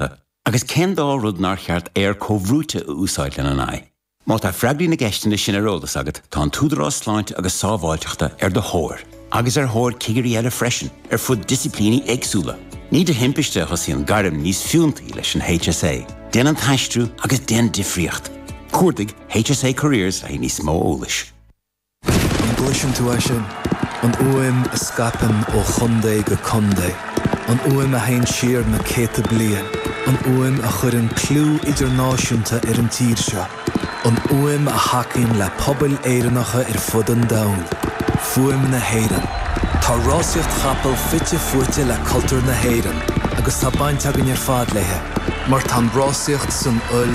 a. Agus cén dá rud nár cheart aer comhbhrúite a úsáid lena n-aghaidh? Má tá freagraí na gceisteanna sin ar eolas agat, tá an tÚdarás Sláinte agus Sábháilteachta ar do thóir, agus ar thóir cigirí eile freisin, ar fud disciplíní éagsúla. Ní de thimpiste a thosaíonn gairm níos fiúntaí leis an HSA. Déan an t-aistriú agus déan difríocht. Cuardaigh HSA Careers le haghaidh níos mó eolais. An gcloiseann tú é sin? An fhuaim a scaipeann ó chontae go contae, an fhuaim a theann siar na céadta bliain, an fhuaim a chuireann clú idirnáisiúnta ar an tír seo, an fhuaim a thacaíonn le pobail Éireannacha ar fud an domhain. Fuaim na hÉireann. Tá rásaíocht chapall fite fuaite le cultúr na hÉireann agus tá baint againn ar fad léi mar tá an rásaíocht san fhuil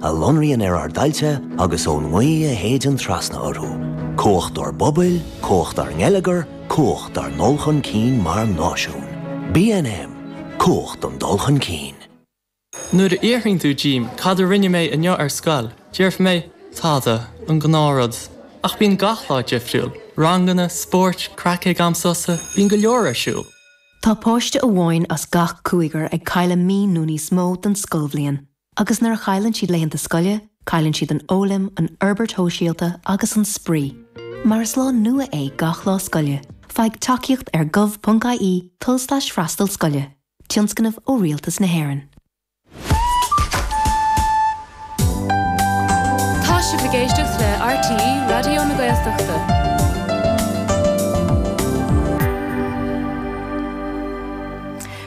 a lonraíonn ar ár dtailte agus ón ngaoth a shéideann trasna orthu, cumhacht ár bpobal, cumhacht ár ngeilleagar, cumhacht ár ndul chun cinn mar náisiún. BNM, Cumhacht don dul chun cinn. Nuair a fhiafraíonn tú díom cad a rinne mé inniu ar scoil, déarfaidh mé, tada, an gnáthrud. Ach bíonn gach lá difriúil, ranganna, spóirt, craic ag am sosa, bíonn go leor ar siúl. Tá páiste amháin as gach cúigear ag cailleadh mí nó níos mó den scoilbhliain. Agus nuair a chailleann siad laethanta scoile, cailleann siad an fhoghlaim, an fhorbairt shóisialta agus an spraoi. Mar is lá nua é gach lá scoile, faigh tacaíocht ar gov.ie tulslais freastal scoile, tionscnamh ó Rialtas na hÉireann. Tá sibh ag éisteacht le RTÉ Raidió na Gaeltachta.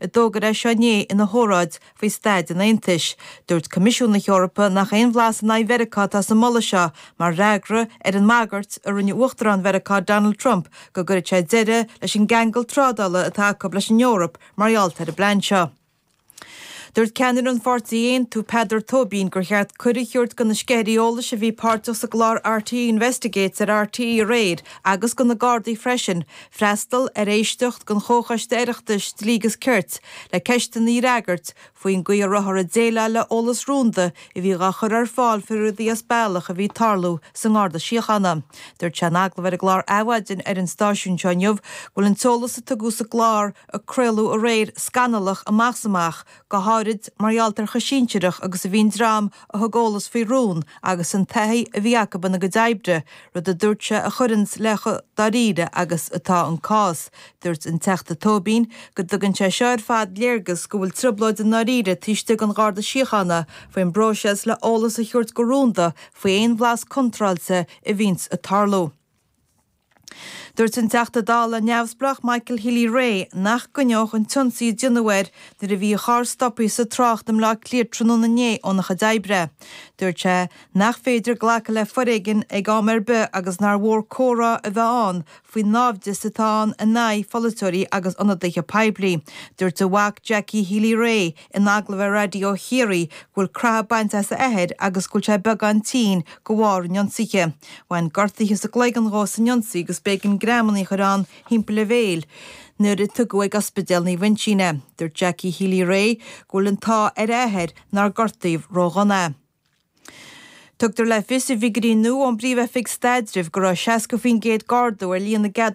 a d'fhógair é seo inné ina hóráid faoi staid an Aontais. Dúirt Coimisiún na hEorpa nach aon bhlas in aghaidh Mheiriceá atá sa mholadh seo mar fhreagra ar an mbagairt a rinne Uachtarán Mheiriceá Donald Trump go gcuirfeadh sé deireadh leis an gceangal trádála atá acu leis an Eoraip mar gheall ar an bplean seo. Dúirt ceannaire an Pháirtí Aontú, Peadar Tóibín, gur cheart cuireadh a thabhairt do na sceithirí eolais a bhí páirteach sa gclár RTÉ Investigates ar RTÉ aréir agus do na Gardaí freisin, freastal ar éisteacht den Chomhchoiste Oireachtais Dlí agus Cirt le ceisteanna a fhreagairt faoin gcaoi a rabhthar ag déileáil le eolas rúnda a bhí dhá chur ar fáil faoi rudaí as bealach a bhí ag tarlú sa nGarda Síochána. Dúirt sé in agallamh ar an gclár Adhmhaidin ar an stáisiún seo inniu go bhfuil an t-eolas a tugadh sa gclár a craoladh aréir scannalach amach 's amach, go háirid mar gheall ar chomh sinsearach agus a bhí an dream a thug eolas faoi rún agus an taithí a bhí acu ina gcuid oibre, rud a dúirt sé a chuireanns le chomh dáiríre agus atá an cás. Dúirt an Teachta Tóibín go dtugann sé seo ar fad léargas go bhfuil trioblóid i ndáiríre taobh istigh den Gharda Síochána faoin bpróiseas le eolas a thabhairt go rúnda faoi aon bhlas contráilte a bhíonns ag tarlú. Dúirt an Teachta Dála neamhspleách Michael Healy-Rae nach gcoinneodh an t-ionsaí a deineadh air nuair a bhí a charr stoptha sa trácht i mBleá Cliath tráthnóna inné é óna chuid oibre. Dúirt sé nach féidir glacadh le foréigean ag am ar bith agus nár mhór comhrá a bheith ann faoin náimhdeas atá ann in aghaidh pholaiteoirí agus ionadaithe poiblí. Dúirt a mhac Jackie Healy-Rae, in agallamh ar Raidió Chiarraí, go bhfuil creathadh bainte as a athair agus go bhfuil sé beagán tinn, go bharr an ionsaithe. Bhain gortuithe sa gcloigeann dhó san ionsaí agus b'éigean greamanna a chur ann thimpeall a bhéil nuair a tugadh ag Ospidéal Naomh Uinseann é. Dúirt Jackie Healy-Rae go bhfuil an t-ádh ar a athair nár gortaíodh ródhona é. Tugtar le fios i bhfigúirí nua ón bPríomh-Oifig Staidrimh go raibh 60% d'ardú ar líon na gceadúnas